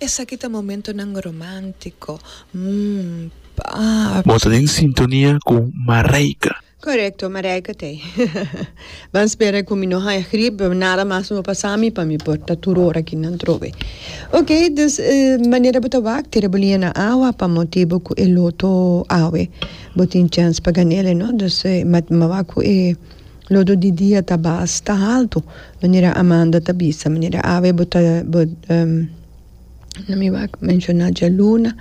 Esaki ta momentonan romántico, mm, papi. Bo ta den sintonia cu Mareike. Correcto, Mareike t'e. Ban spera cu mi no haya grip, nada mas no a pasa mi pa mi por ta tur ora aki nan trobe. Ok, dus manera bo ta wak, tira bo liña na awa pa motibo cu e loto awe bo tin chance pa gan'e, no? Dus mawak cu e. Lodo di dia ta bas ta haltu, manera Amanda ta bisa, manera awe bo ta bo na mi wak menshona djaluna,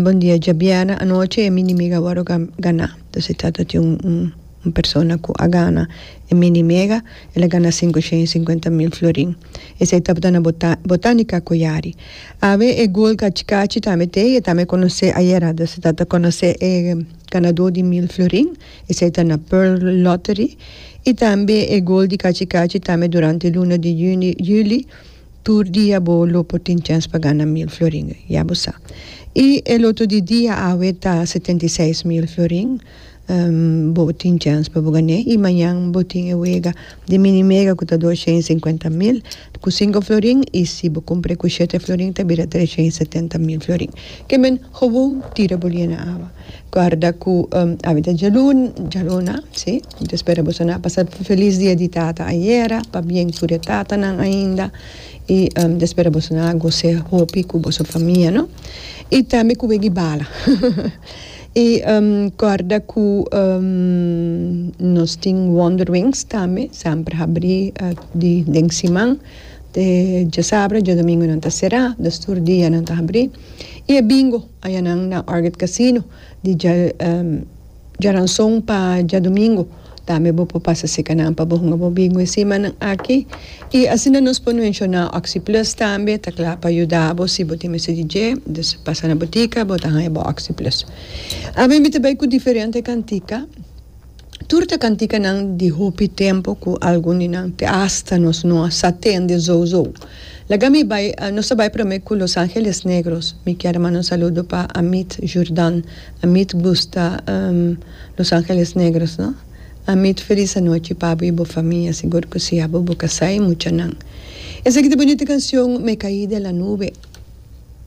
bon dia djabièrnè anochi e minimega wòrdu ganá, dus e trata di un persona ku a gana e minimega, el a gana sinku shen i sinkuenta mil florin, esei tabata na bota botanika koyari, awe e gol kachi kachi tambe t'e, e tambe konosé ayera, dus e trata konosé e ganadó di mil florin. Esei ta na Pearl Lottery y tambe e gol di cachi cachi tambe durante luna di juni, juli, tur dia bo lo por tin chens pa gana mil florin, ya bo sa. Y e loto di dia awe ta setenta i seis mil florin, bo tin chens pa bo gan'e y mañan bo tin e wega di mini mega cu ta dos shen y cincuenta mil. Ku sinku florin i si bo kumpr'é ku shete florin ta bira tresha i setenta mil florin. Ke men gewoon tira bo lie na awa. Guarda ku awe ta djalun, djaluna, si. Mi ta spera boso na pasa felis dia di tata ayera, pabien tur e tatanan ainda. I mi ta spera boso na gos'é hopi ku boso famia, no? I tambe ku weg'i bala. I kòrda ku nos tin Wonder Wings tambe, semper habrí den siman, te djasabra, djadomingu nan ta será, dus tur dia nan ta habrí. I e bingo ayanan na Orchid Casino di djaranson pa djadumingu. Tambe bo por pasa seka nan pa bo hunga bo bingo e simannan aki. I asina nos por menshoná OxyPlus tambe, ta kla pa yuda bo si bo tin mester di dje, dus pasa na butika bo ta haña bo OxyPlus. Awe mi ta bai ku diferente kantika, tur ta kantikanan di hopi tempu ku algun di nan te asta nos no a sa tende zòu zòu. Laga mi bai, nos ta bai promé ku Los Angeles Negros. Mi kier manda un saludo pa Amit Jurdan. A mit gusta Los Angeles Negros no. A mit felis anochi pabu y bo famia sigur cu si abo bo casai muchanan. Esaki ta bonito cancion Me caí de la nube.